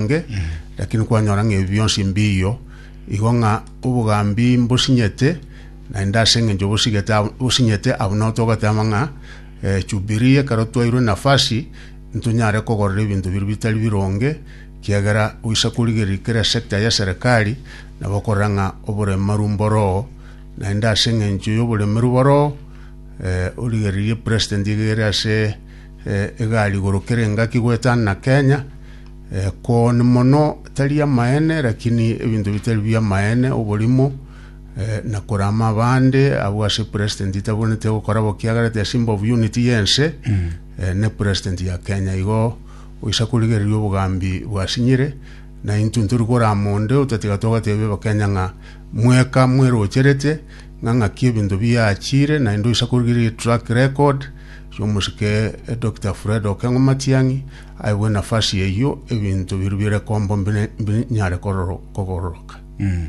nge, lakini kwanyora ng'a ebi bionsi mbiyo, igo ng'a obogambi mbosinyete, naende ase engencho bosigete ab- bosinyete abwo nabo togoteba ng'a eh, Jubilee ekero twairwe nafasi ntonyare kogorora ebinto biria bitari bironge kiagera goisa korigereria kera sector ya serikali nabo okorora ng'a oboremaru mboroo naende ase engencho y'oboremeru boroo eh, origererie president iga ere ase eh, egari igoro kera engaki goetana Kenya Ekooni mono tari amaene, lakini ebinto bitari bi'amaene, oborimo, eh, na korama abande abwo ase president itabwenerete gokora bo kiagerete ase imbavu unit y'ense eh, ne president ya Kenya igo oisa korigereria obogambi bwasinyire na intwe ntori korama onde otatiga togatebia abakenya ng'a mweka mwerocherete ng'a ng'aki ebinto biachire naende oisa korigereria track record y'omosike eh, Dr. Fred Okengo Matiang'i Aigwe nafasi eyio ebinto biria bire kombo mbine- mbinyare kororo- kogororoka. Mm.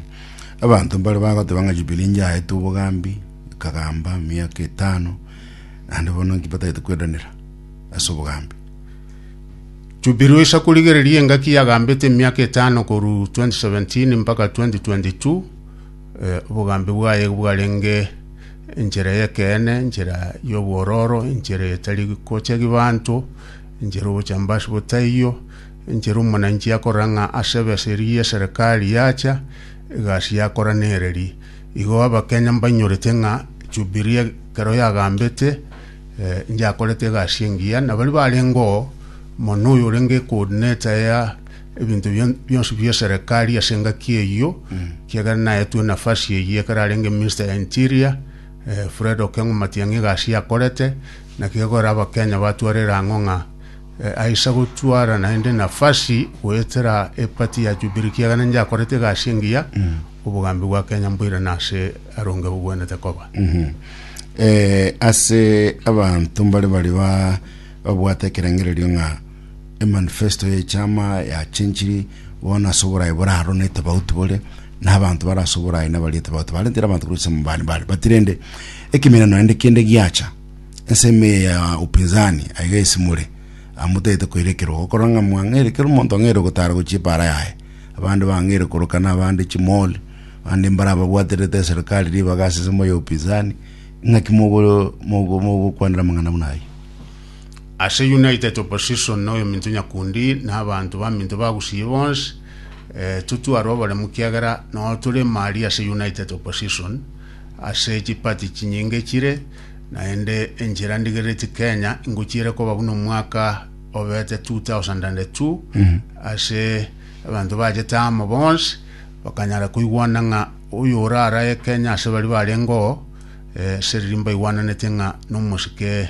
Abanto mbare bagoteba ng'a Jubilee nyaete obogambi, ekagamba emiaka etano, naende bono nki batagete kweranera ase obogambi? Jubilee oisa korigereria engaki yagambete emiaka etano korwa 2017 mpaka 2022, eh, obogambi bwaye bwarenge enchera y'ekeene, enchera y'obwororo, enchera etari gocha egebanto, Enchera ogocha mbaasi bo taiyo, enchera omonanchi akorora ng'a ase ebesa eria y'eserekari yacha egasi yakora nereri. Igo Abakenya mbanyorete ng'a Jubilee ekero yagambete njakorete egasi engiya na baria barengeo mono oyo orenge coordinator ya ebinto bionsi bi'eserekari ase engaki eyio ekiagera naetwe nafasi eyio ekero arenge minister ya interior Fred Okengo Matiang'i egasi yakorete. Naki ekore Abakenya batwarire ang'o ng'a aisa gotwara naende nafasi goetera epati ya Jubilee, kiagera ninche akorete egasi engiya, obogambi bwa Kenya mboirane ase aronge bogwenerete koba. Eh, ase abanto mbare bare ba babwate ekerengererio ng'a emanifesto y'echama yachenchiri bono ase oborayi boraro na etabauti bore na abanto bare ase oborayi nabari etabauti bare ntera abanto korwa mambani bare batirende ekemerero naende kende giacha enseme ya upinzani aiga esimore amotete koira ekerogo okora ng'a mwang'ere kero omonto ang'ere gotara gochia epara yaye abande bang'ere korokana abande chimall abande mbara babwaterete eserikali ribaga ase ensemo ya upinzani ng'aki mogo mogokwanera amang'ana buna ayio. Ase United Opposition na oyominto nyakundi na abanto baminto bagusii bonsi, eh, totware oboremu kiagera nao tore emari ase United Opposition ase chiparty chinyinge chire naende enchera ndigereretie Kenya ingochiere koba buna omwaka obete 2002 ase abanto bachete amo bonsi bakanyara koigwana ng'a oyo orarae Kenya ase baria barengeo eh, ase riria mbaigwananete ng'a nomosike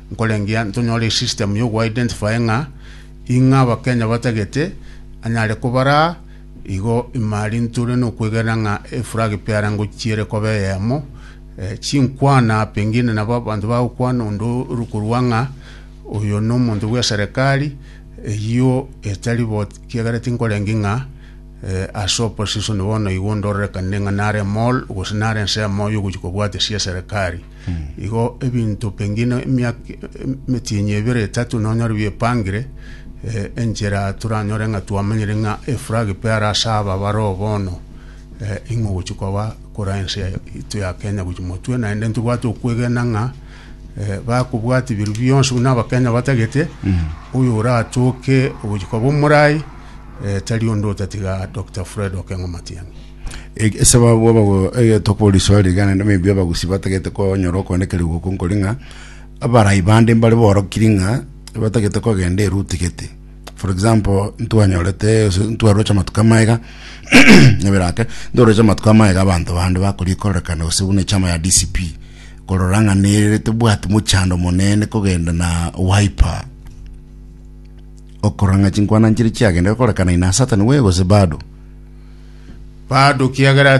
nkorengia ntonyore esystem ya ogoidentify ng'a ing'a abakenya batagete anyare kobara igo imari ntore nokwegena ng'a efrag piara ngochiere koba eyemo eh, chinkwana pengine nabo abanto bagokwana onde orukorwa ng'a oyo nomonto bwa eserekari eyio etari bo kiagera tinkorengi ng'a eh, ase opposition bono igo ndororekanire ng'a nare mall gose nare ensemo yogochi kobwate sia eserekari Igo ebinto pengine emiaka emitinyi ebere etatu nonyore biepangire eh, enchera toranyore ng'a twamenyire ng'a efuragi pe ara ase aba bare oo bono eh, ing'o gochi koba kora ense yaito ya Kenya gochi motwe naende ntobwate okwegena ng'a eh, bakobwati biri bionsi buna abakenya batagete oyo oratoke ogochi koba omorai eh, tari onde otatiga Dr. Fred Okengo Matiang'i. Eg- Ase abagwo bago egetopo risoa rigane na mebia abagusi batagete konyora okonekerigwa okwo nkori ng'a abarai bande mbare borokiri ng'a batagete kogenda eruti gete for example ntwanyorete ase ntwaroche amatuko amaega nyebera ake ntwaroche amatuko amaega abanto bande bakorikorerkana gose buna echama ya DCP korora ng'a nere tebwati mochando monene kogenda na wiper Okorora ng'a chinkwana nchiria chiagenda gokorekana inasete nigo egose bado, bado, kiagera